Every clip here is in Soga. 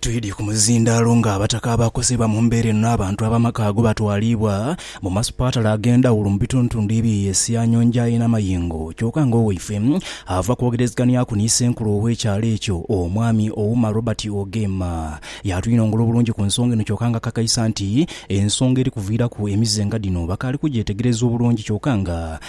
Twidhye ku muzindaalo nga abataka abakosebwa mu mbeera eno n'abantu ab'amaka ago batwaliibwa mu masupatala ag'endhawulo mu bitundutundu ebye Esia, Nyonjae na Mayingo kyoka nga owaife ava kwogerezganyaku ni senkulu ow'ekyalo ekyo omwami Ouma Robert Ogeema y'atwinongola obulungi ku nsonga eno kyoka nga akakaisa nti ensonga eri kuviiraku emize nga dhino bakaali kugyetegereza obulungi kyoka nga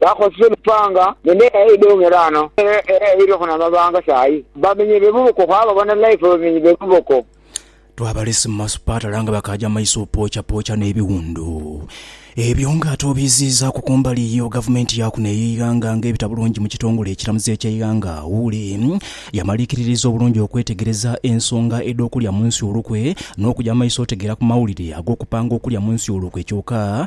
Baakozesa emipanga nende eidho ng'era ano era eiriku n'amabanga sayi. Bamenye be buboko kwabo bona life bamenye be buboko. Twabalese mu masupatala nga bakaaja maiso opoochapoocha n'ebiwundu ebyo nga ate obiiziizaaku ku mbali yo gavumenti ya kuno ey'eighanga nga ebita bulungi mu kitongole ekiramuzi eky'eighanga Wuuli yamaliikiririza obulungi okwetegereza ensonga edh'okulya mu nsi olukwe n'okuja mu maiso otegeera ku mawulire ag'okupanga okulya mu nsi olukwe kyoka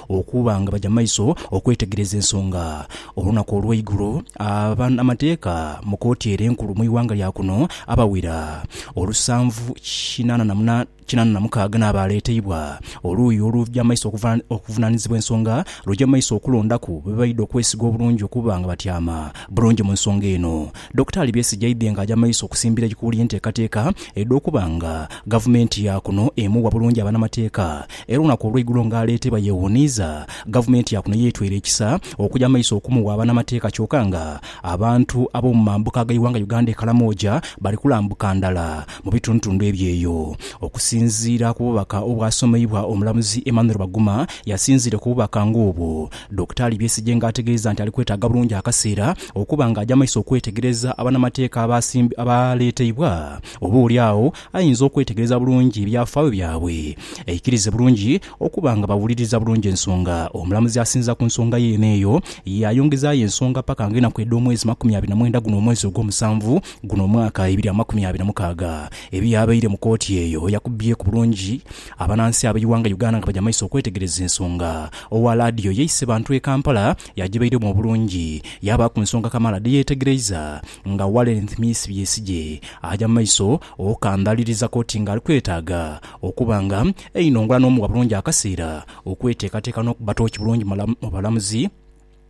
Okuba nga baja maiso okwetegereza ensonga olunaku olweigulo, aba amateeka mu kooti ere enkulu mu ighanga lya kuno abawera olusanvu kinana na muna kinana na mukaaga n'abaaleeteibwa oluuyi oluja maiso okuva okuvunanizibwa ensonga luja maiso okulondaku bebaidha okwesiga obulungi okuba nga batyama bulungi mu nsonga eno Dokitaali Besigye aidhye nga aja maiso okusimbira eikuuli enteekateeka edh'okuba nga Gavumenti ya kuno emuwa bulungi abanamateeka era olunaku olweigulo nga aleetebwa yewuniiza Gavumenti ya kuno yetweire ekisa okuja maiso okumuwa abanamateeka kyoka nga abantu ab'omumambuka ag'eighanga Uganda e Karamoja bali kulambuka ndala mu bitundutundu ebyeyo. Okusinziira ku bubaka obwasomeibwa omulamuzi Emmanuel Baguma yasinziire ku bubaka nga obwo Dokitaali Besigye nga ategeeza nti ali kwetaaga bulungi akaseera okuba nga aja maiso okwetegereza abanamateeka abaaleeteibwa oba oli agho ayinza okwetegereza bulungi ebyafaayo byabwe aikirize bulungi okuba nga bawuliriza bulungi ensonga. Omulamuzi asinziza ku nsonga yeene eyo yaayongezaayo ensonga paka nga enaku edh'omwezi makumi abiri na mwenda guno omwezi ogw'omusanvu guno omwaka ebiri amakumi abiri na mukaaga ebiyabaire mu kooti eyo yakubbyeku bulungi Abanansi ab'eighanga Uganda nga baja maiso okwetegereza ensonga. Owa laadiyo yaise bantu e Kampala yagibairamu obulungi yaabaaku nsonga kamaala dheyeetegereiza nga Walenth Miisi Byesigye aja mu maiso okukandhaaliriza kkooti nga ali kwetaaga okuba nga einhongola n'omuwa bulungi akaseera okweteekateeka n'okuba tooki bulungi mu balamuzi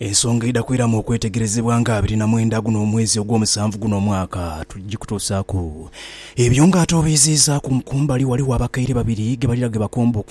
Ensonga edha kwiramu okwetegerezebwa nga abiri na mwenda guno omwezi ogw'omusanvu guno omwaka tugikutuusaaku. Ebyo nga ate obiiziizaaku, kumbali waliwo abakaire babiri ge balira ge bakomba okuva.